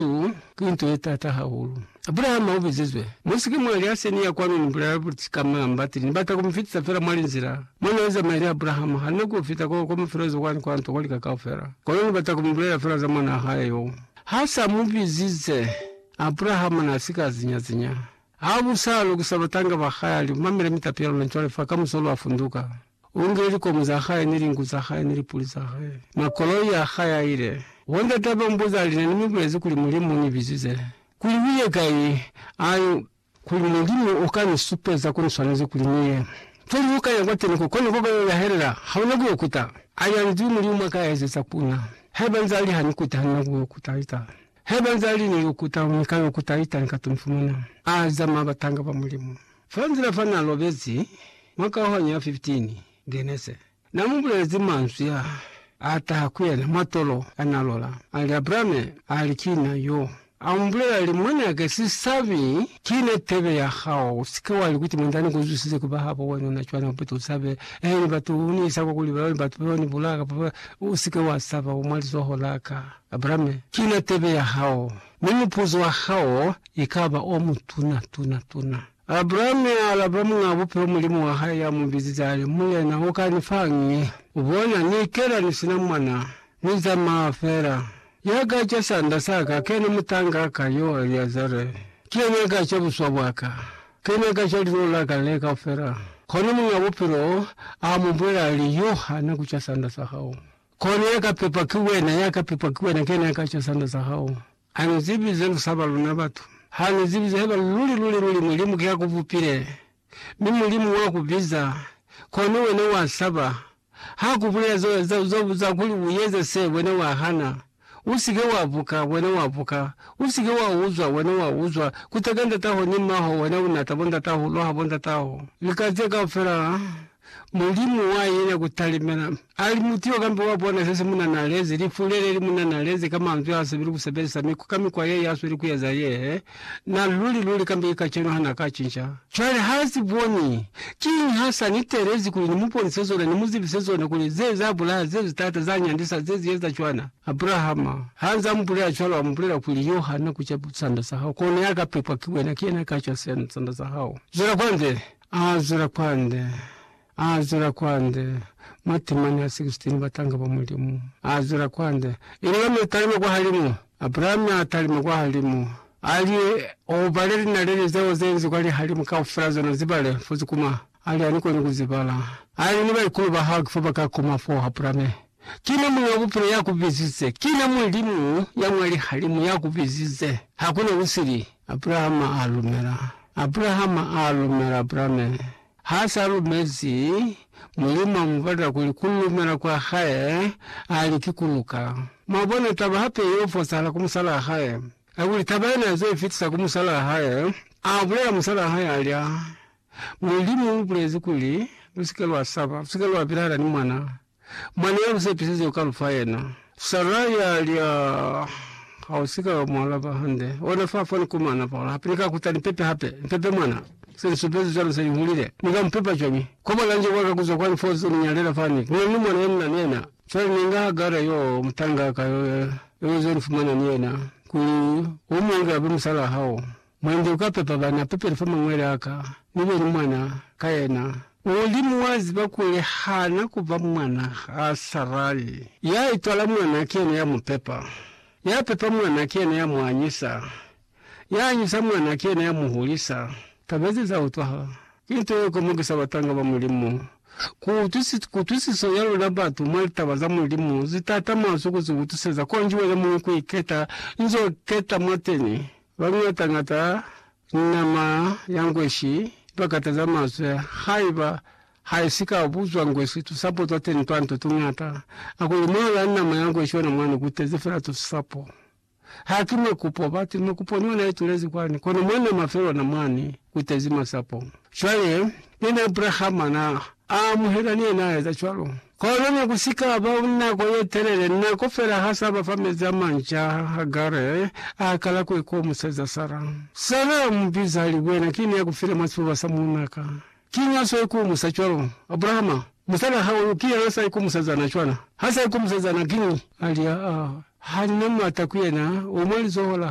Seo ki nto ye taata hahulu. Abrahama u bizizwe. Mu si ke mwa lya se ni ya kwanu ni bulela buti ka mwa mbatile. Ni bata ku mu fitisa fela mwa linzila mo na zamaya ni Abrahama. Ha ni nyaki ku fita ko, ko mafelelezo kwani kwa nto, kwa lika kaufela. Kono ni bata ku mu bulela fela za mwanaa hae yo. Ha sa mu bizize, Abrahama na si ka zinya-zinya. Ha bu sa lokisa batanga ba hae, a li, Mamela mitapi ya luna cwale fa, kamuso lwa funduka. U ngile likomo za hae, ni linku za hae, ni lipuli za hae, mwa koloi a hae a ile. Bo ndata ba mbuzi a lina ni mi bulezi kuli, Mulimu u ni bizize kuli ni ye kai? A i. Kuli Mulimu u ka ni supeza ko ni swanezi kuli ni ye. Feli lu ka ya kwateni ko, kono ko ka yo yahelela, ha una ku yo kuta. A ya nzwi Mulimu a ka ezeza ku na. Haiba nzaa li, Ha ni kute, ha ni na ku yo kuta ita. Haiba nzaa li, Ni yo kuta, ni ka yo kuta ita, ni ka to ni fumana. A zama batanga ba Mulimu. Fa nzila fa n'a lobezi mwa kaohano ya 15, Genese, n'a mu bulelezi manzwi a a taha ku yena mwa tolo a n'a lola, a li, Abrame, a li, Ki na yo. A mu bulela, a li, Mwan'a ka, si sabi, ki na tebe ya hao. U si ke wa li kuti, Mwan'a ni ku zwisize ku ba habo wena, u na cwana buti, u sabe. He ni batu, u ni isa kwa kuli ba yo ni batu ba yo ni bulaya kapa ba, u si ke wa saba, u mwa lizoho la ka. Abrame, ki na tebe ya hao. Mi mupuzo wa hao ikaba o mutuna tuna tuna. Abrahame a alaba Muñ'a Bupilo Mulimu wa hae ya mu bizize a li, Mulena, u ka ni fañi? U bona, ni ikela ni si na mwana. Ni zamaa fela. Ya ka ca sanda sa ka, kena mutang'a ka, yo Eliazare. Ki yena ya ka ca buswa bwa ka. Kena ya ka ca linolo la ka le kaufela. Kono Muñ'a Bupilo a mu bulela a li, Yo hana ku ca sanda sa hao. Kono ya ka pepwa ki wena, ya ka pepwa ki wena, ki yena ya ka cwa sanda sa hao. Ha ni zibi ze lu saba luna batu. Ha ni zibi ze haiba luli, luli, luli Mulimu ki ya ku bupile, mi Mulimu wa ku biza, kono wena wa saba. Ha ku bulela za, za, za, za kuli u eza se, wena wa hana. U si ke wa buka, wena wa buka. U si ke wa uzwa, wena wa uzwa. Kuteka ndataho ni mmaho, wena u natabo ndataho, u loha bo ndataho. Lika ze kaufela. Mulimu wa yena ku talimela. Ali mutu yo kambe wa bona sesi munanalezi, lifu lele li munanalezi ka manzwi ha sebeli ku sebelisa miku ka mikwa ye ya sweli ku eza ye he na luli luli kambe ki kacenu ha na ka cinca. Cwale ha si boni. Kiñi ha sa ni teelezi kuli ni mu bonise zona, ni mu zibise zona, kuli ze za bulaha, ze zi tata, za nyandisa, ze zi eza cwana? Abrahama, ha nza mu bulela cwalo, a mu bulela kuli, Yo ha na ku ca sanda sa hao, kono ya ka pepwa ki wena, ki yena ya ka cwa sanda sa hao. Zwela kwanzeni. A zwela kwande, a zwela kwande, matimani a 16 batanga ba Mulimu. A zwela kwande, ili ya mi talima kwahalimu. Abrahami a talima kwahalimu, a li, U bale linaleli zeo ze nzi kwa lihalimu kaufela, zona zibale, fo zikuma. A li, Ani koni ku zibala. A li, Ni baikulu ba hao ki fo ba ka kuma foo, Abrahami. Ki na Muñ'a Bupilo ya ku bizize. Ki na Mulimu ya mwa lihalimu ya ku bizize. Ha ku na ku sili. Abrahama a lumela. Abrahama a lumela Abrame. Ha sa lumezi, Mulimu a mu bata kuli ku lumela kwa hae, a li, Ki ku luka. Mwa bona, taba hape y'o fosahala ku musalaa hae. Kakuli taba yena ya z'o i fitisa ku musalaa hae, a bulela musalaa hae, a li, Aa, Mulimu u bulezi kuli, Lu si ke lwa saba, lu si ke lwa pilahala ni mwanaa. Mwa ne a lu sepisize ku ka lu fa yena. Sara ya li, Aa, ha u si ka wa mu alaba hande. Ona fa fani ku mana fa hola hape. Ni ka kuta ni pepe hape. Ni pepe mwana. Se ni supezi cwalo se ni hulile. Ni ka mu pepa cwañi? Kwa bona nje bwa ka kuzwa kwani foo ze ni nyalela fani, ku na ni mwana ye ni na ni yena. Cwale ni inga Hagara yoo, mutang'a ka yo, yo ze ni fumana ni yena, kuli u mu inge abe musalaa hao. Mwande uka pepa bana pepeli fa mangwele aka, mi be ni mwana ka yena. Mulimu wa ziba kuli hana ku ba mwana ha Sarali. Ya itwala mwana ki yena ya mu pepa. Ya pepa mwana ki yena ya mu anyisa. Ya anyisa mwana ki yena ya mu hulisa. Taba ze za utwahala. Ki nto ye komokisa batanga ba Mulimu. Ku utwisiso ya luna batu mwa litaba za Mulimu zi tatama zu ku zi utwiseza, konji wena muñwi ku iketa nzo keta mwateni. Baluñata-ñata ni nama ya ngweshi ba kataza mazwi haiba ha i si ka buzwa ngweshi tusapo twa teñi twa nto tuñata. A ku li mono la nama ya ngweshi ona mwani ku tezi fela tusapo. Ha ki makupo bati, makupo ni ona i tulezi kwani, kono mwa nama fela ona mwani ku tezi masapo. Cwale, ki ni Abrahama na a amuhela ni yena a eza cwalo. Kono ne ku si ka ba nako ye telele, nako fela ha sa ba fa mezi a manca, Hagare a kala ku ikomuseza Sara. Sara a mu biza, a li, Wena ki ne a ku file mwa sifuba sa muuna ka. Kiñi ha swa ikumusa cwalo? Abrahama, musal'a hao yo, ki yena sa ikomuseza na cwana. Ha sa ikomuseza na, kiñi? A li, Aa, ha ni na m'ata ku yena, u mwa lizoho la.